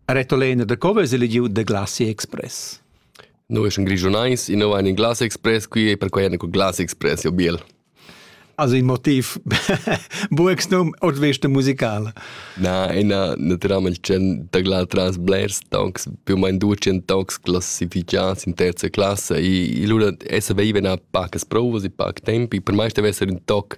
Retolena da co vesa legiu da Glasi Express? Noi eschan grischunais, in ein in Glass Express, qui e per quai eran con Glass Express, jo biel. Also in motiv buex num ot vesta musicala. Na, ina naturalmente c'en da gla tras blers tonks, più mein ducen tonks classificads in terza classe e lura essa veiva na pacas provas e pac tempi, per mai stava esser un toc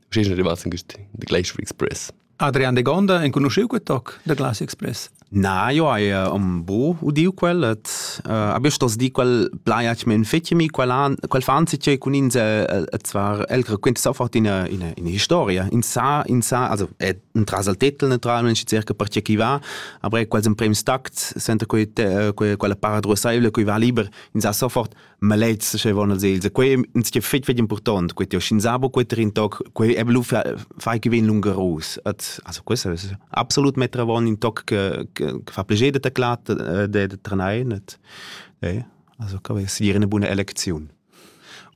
Sch'ins rimasta in de Glacier Express. Adrian de Gonda enconosciu quel toc de Glacier Express? Na, io hai uh, un bo udiu quel et uh, abbius tos di quel plaia che men fetimi quel an quel fanzi che cun ins et zwar el raquint sofort in in in historia in sa in sa also è un trasal tetel naturalmente circa per che chi va aber quels in prem stact senta quei quella para drosaivle qui va liber in sa sofort ma lez sche von als els quei ins che fetg fetg important quei shin sabo quei trin toc quei e blu fai che vin lungarus at also questo ist absolut metra von in toc che fa pleger de taclat de de tranai net eh also ka si dire eine buona elezion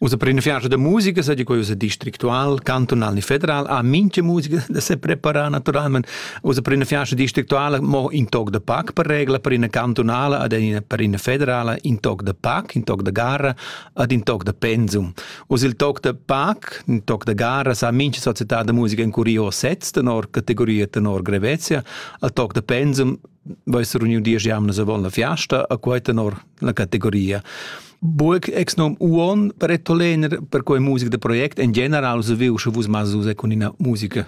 Usa per in fianco de musica, sa di quei usa districtual, cantonal ni federal, a minche musica da se prepara naturalmente Usa per ina fiasta districtuale mo in toc de pac per regla per ina cantunala ad ina per ina federala in toc de pac, in toc de garra ad in toc de pensum. Usa il toc de pac, in toc de garra sa mincha società de musica in curio sets tenor categoria tenor grevezia, a toc de pensum veissero uniu dies jamnas avon la fiasta a quei tenor la categoria. Burg ex nom uon per ettolener per quei musica de project en general so viu sche vus mas usa con ina musica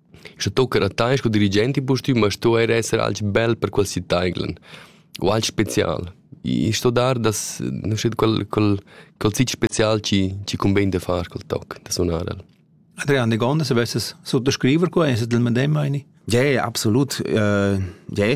Sche tocca a tai sco dirigent impustüm, ma sto eir esser alch bel per quel sitaiglen u alch special. I sto dar das nu schet quel quel quel siti special chi chi cumbain da far quel toc, da sunar el. Adrian, die Gonde, se vesses sottoscriver qua, es es del medem, meini? Ja, ja, absolut. Äh, ja,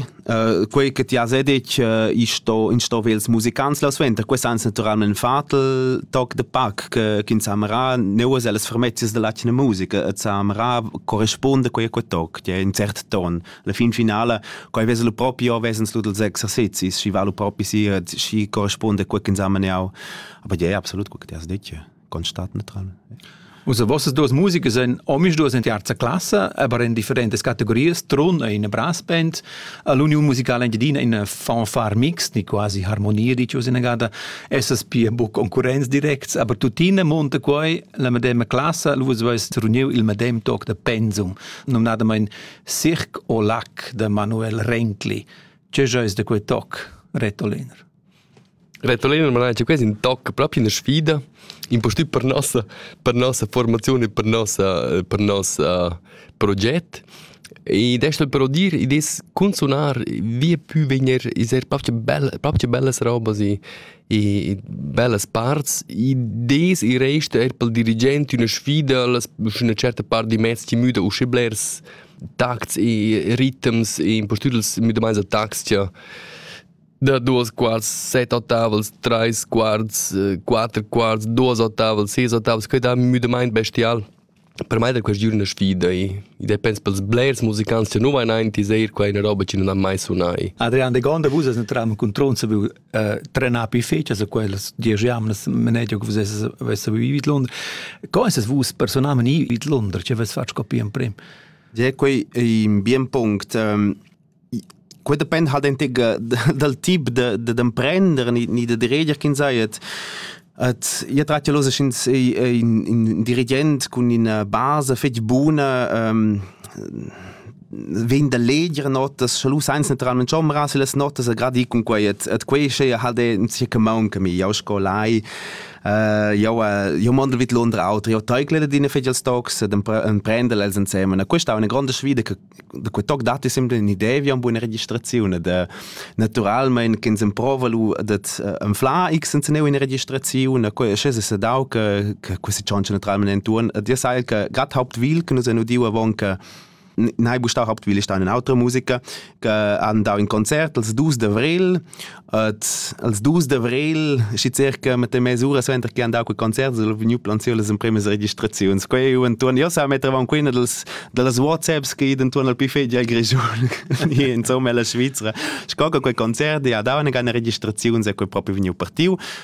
quei che ti has detg isto in sto vels musicants la suenter quest ans naturalment fatel toc de pac che kin samra neuas alles fermezias de latine musica et samra corresponde quei quei toc ja in cert ton la fin finale quei veselo proprio vesens lu dals exercizis si valu propi si si corresponde quei kin samra aber ja absolut quei che ti has detg constat neutral. Usa vossas duas musica sind omis duas in terza classe, aber in differentes categorias, trun e in brass band. L'union musicale engiadina in fanfare mixed, ni quasi harmonia di cios in agada, essas pia bu concurrenz directs, aber tuttina monta quai la medema classe, lu vais reuniu il medem toc da pensum, nomnadamain Cirque au lac de Manuel Renkli. Ce jois de quei toc, Retoliner? Retolina manatscha quest in tocca propi ina sfida, impustüt per nossa per nossa formaziun e per nossa per nossa proget. Ed es però dir, id es cun sunar via pü vegner es eir propcha bella propcha bellas robas e e bellas parts. Id es e resta eir pel dirigent üna sfida, las üna certa part di mezs chi müda usche blers tacts e ritms e impustüt els müdamaints da tacs cha da duos quarts, set ottavels, trais quarts, eh, quatter quarts, duos ottavels, ses ottavels, que da müdamaint bestial. Per mai da quest giorn una sfida e ed pensa pels blers musicants che nu vain aint is eir quai una roba che nun ha mai sunai. Adrian de Gonda, vus as entram cun Tronza vu trenar pi fechas a quellas diesch jamnas manegia che vus avess vivit Londra. Co es vus personalment vivit Londra, che vess fatg copia in prim? Ja, quei è un bien punct. Ähm, quei depend halt dentig dal tip da d'emprender ni ni da diriger ch'ins ei et et io trat jalosa sch'ins ei in dirigent cun ina basa fetg buna vegn da leger notas sche lu sainz naturalment chomeras las notas a gradi cun quei et et quei sche halt in sia common che mi jau scolai jau jau mondel vid Londra auter jau teiclele d'ina fetg als tocs d'emprender els ensemen a questa è una grande sfida che quei toc datti sempre un'idea vi a buona registrazione de naturalmente che ins prova lu dat enfla x senza ne una registrazione quei sche se dau che che questi cianci naturalmente intorno dir sai che grad hauptwil che nus hanno diu avon che Nei bustau hauptwil ist eine andere Musiker, che han dau in Konzert als 2 d'avril Et als dus d'avrel, schi circa mit dem mesura suenter che han dau quei concert, sono vegniu planziu las empremas registraziuns. Quei u entuorn, io sa mettevamo qui dals dallas WhatsApps che intuorn al buffet già Grischun, insomma la Svizzera. Sco che quei concert ja dava eine registrazione, se quei proprio vegniu partiu.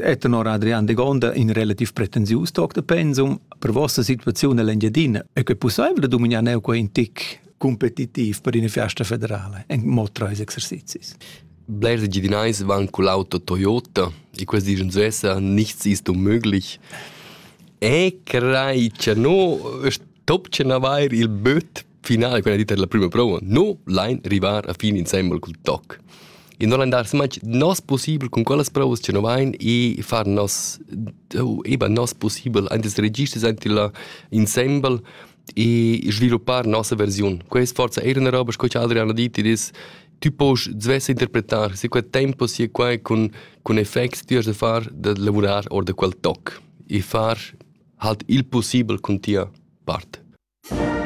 E tenor Adrian Degonda in relativ pretensius toc da pensum per vossa situaziun all'Engiadina e che pussaivel da dominar neu quei in tic competitiv per una festa federale en mod tra ils exercizis. Blers Engiadinais van con l'auto Toyota e questi dicono svessa nichts ist unmöglich. E crei che no stopchen avair il böt finale quella dita della prima prova no lein rivar a fin insembel cul toc e non lein dar smatg nos possibel con quellas provas che no vein e far nos eba nos possibel antes registers ante la insembel e sviluppar nossa versione quest forza era una roba sco che Adrian ha detto dis tu puoi svesse interpretare se quel tempo sia qua con con effects ti has da far da lavorare or da quel toc e far halt il possibel con tia parte